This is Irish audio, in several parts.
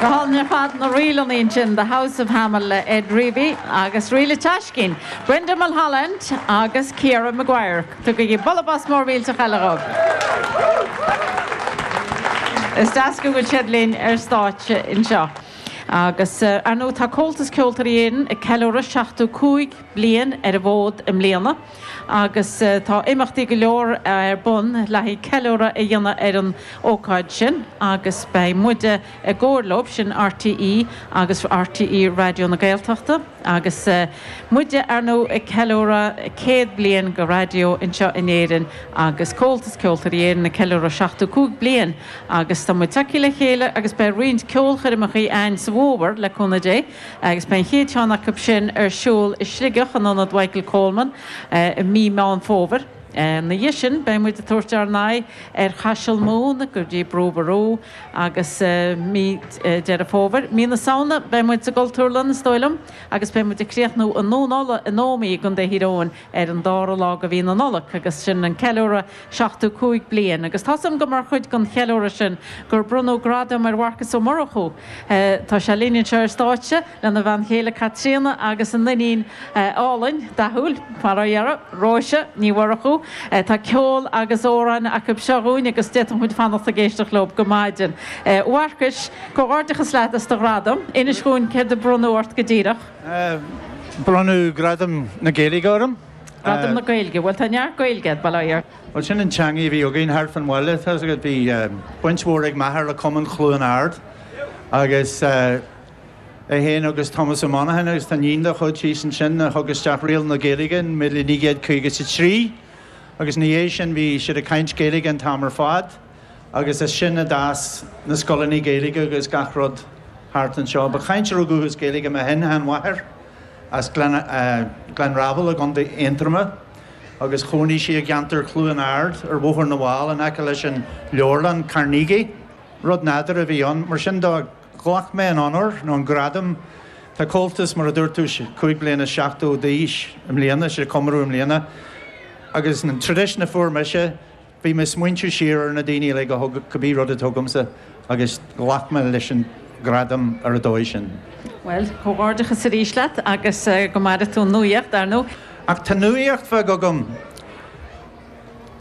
Go hálainn ar fad na ríleanna ansin, The House of Hamill le Ed Reavy agus ríl a teascín, Brendan Mulholland agus Ciara Maguire. Tugaigí bualadh bos mór millteach eile dhóibh. Is deas go bhfuil siad linn ar stáitse anseo. Agus ar ndóigh tá Comhaltas Ceoltóirí Éireann ag ceiliúradh 75 bliain ar an bhfód i mbliana. agus tá imeachtaí go leor ar bun le haghaidh ceiliúradh a dhéanamh ar an ócáid sin agus beidh muide i gcomhar leo, sin RTÉ agus RTÉ Raidió na Gaeltachta, agus muide, ar ndóigh, ag ceiliúradh céad bliain de Raidió anseo in Éirinn agus Comhaltas Ceoltóirí Éireann ag ceiliúradh seachtú cúig bliain agus tá muid tagtha le chéile agus beidh roinnt ceolchoirmeacha ann sa bhfómhar, le cúnamh Dé. agus beidh an chéad cheann acu sin ar siúl i Sligeach in Ionad Mhichael Coleman i mí Meán Fómhair. Ina dhiaidh sin beidh muid ag tabhairt ár n-aghaidh ar Chaiseal Mumhan go dtí Brú Ború agus mí Deireadh Fómhair. Mí na Samhna beidh muid sa gCultúrlann is dóigh liom agus beidh muid ag críochnú i nDún Uladh in Ómaigh i gContae Thír Eoghain ar an dára lá de mhí na Nollag agus sin an ceiliúradh seachtú cúig bliain agus tá 'fhios agam gur mar chuid den cheiliúradh sin gur bronnadh gradam ar Mharcas Ó Murchú. Tá sé linn anseo ar stáitse lena bhean chéile Caitríona agus a n-iníon álainn, dathúil, mar a deirtear, Róise Ní Mhurchú. Tá ceol agus amhráin acu seo dhúinn agus d'fhéadfadh muid fanacht ag éisteacht leo go maidin. A Mharcais, comhghairdeachas leat as do ghradam. Inis dhúinn céard a bronnadh ort go díreach. Bronnadh Gradam na Gaeilge orm. Gradam na Gaeilge? Bhuel, tá neart Gaeilge agat, bail ó Dhia! Bhuel, sin an teangaidh a bhí againn thart fan bhaile. Tá 'fhios agat, bhí baint mhór ag m'athair le Cumann Chluain Ard agus é fhéin agus Tomás Ó Monacháin agus tá iníon dá chuid thíos ansin a thug isteach riail na Gaeilge in míle naoi gcéad caoga 'sa trí agus ina dhiaidh sin bhí siad ag caint Gaeilge an t-am ar fad. Agus as sin a d'fhás na scoileanna Gaeilge agus gach rud thart anseo. Ba chainteoir dúchais Gaeilge mo shin-seanmháthair as Gleann Fhreabhail i gContae Aontroma agus chónaigh sí i gceantar Chluain Ard ar Bhóthar na bhFál in aice leis an leabharlann Carnegie. Rud nádúrtha a bhí ann. Mar sin do ghlac mé an onóir nó an gradam, tá Comhaltas mar a dúirt tú cúig bliana is seachtó d'aois i mbliana, sé comóradh i mbliana, agus an traidisiún a fuair mise, Bhí mé ag smaointiú siar ar na daoine uilig a thug cibé rud atá agamsa agus ghlac mé leis an gradam ar an dóigh sin. Bhuel, comhghairdeachas arís leat agus go maire tú an nuaíocht, ar ndóigh. Ach tá nuaíocht bheag agam.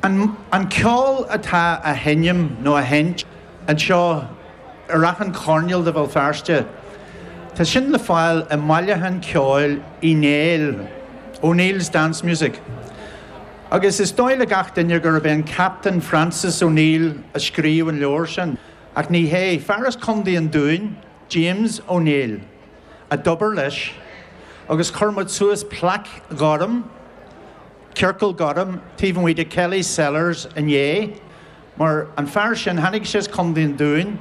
An an ceol atá á sheinm nó á sheint anseo ar achan choirnéal de Bhéal Feirste, tá sin le fáil i mbailiúchán ceoil Uí Néill, O'Neill's Dance Music. Agus is dóigh le gach duine gurb é an Captaen Francis O'Neill a scríobh an leabhar sin, ach ní hé. Fear as Condaí an Dúin, James O Néill, a d'obair leis, agus chuir muid suas plaic ghorm, ciorcal gorm, taobh amuigh de Kelly's Cellars inné, mar an fear sin, tháinig sé as Condaí an Dúin,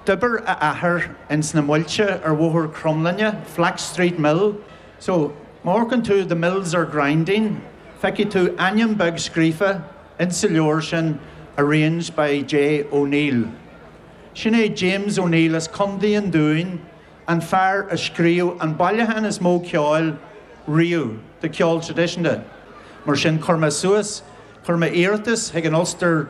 d'oibir a athair ins na muilte ar Bhóthar Chromghlinne, Flax Street Mill, So, má amharcann tú The Mills Are Grinding, feicfidh tú ainm beag scríofa ins an leabhar sin Arranged by J. O'Neill. Sin é James O'Neill as Contae an Dúin, an fear a scríobh an bailiúchán is mó ceoil riamh de ceol traidisiúnta. Mar sin, chuir mé suas, chuir mé iarratas chuig an Ulster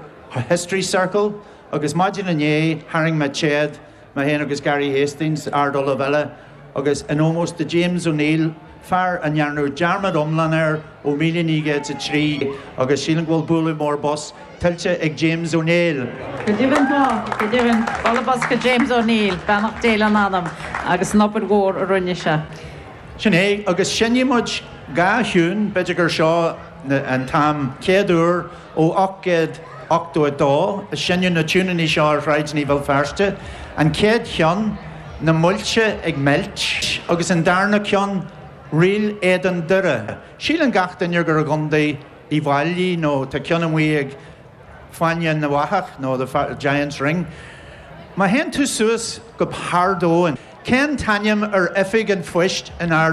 History Circle agus maidin inné tharraing mé téad Mahon agus Gary Hastings, Ard-Ollamh eile, agus in ómós do James O'Neill, fear a ndearnadh dearmad iomlán air ó 1903 agus sílim go bhfuil bualadh mór bos tuillte ag James Ó Néill! Go deimhin tá! Go deimhin, bualadh bos do James Ó Neill, beannacht Dé lena anam agus an obair mhór a rinne sé. Sin é, agus seinnfidh muid dhá thiún, b'fhéidir gur seo an t-am chéad uair Ó 1882 a seinneadh na tiúineanna seo ar shráideanna Bhéal Feirste, an chéad cheann, 'Na Muilte ag Meilt', agus an darna ceann, 'Ríl Éadan Doire'. Síleann gach duine gur i gContae Uíbh Fhailí nó tá ceann amuigh ag Fáinne na bhFathach nó the Giant's Ring. Má théann tú suas go hArd Eoin. Cén t-ainm ar oifig an phoist in Ard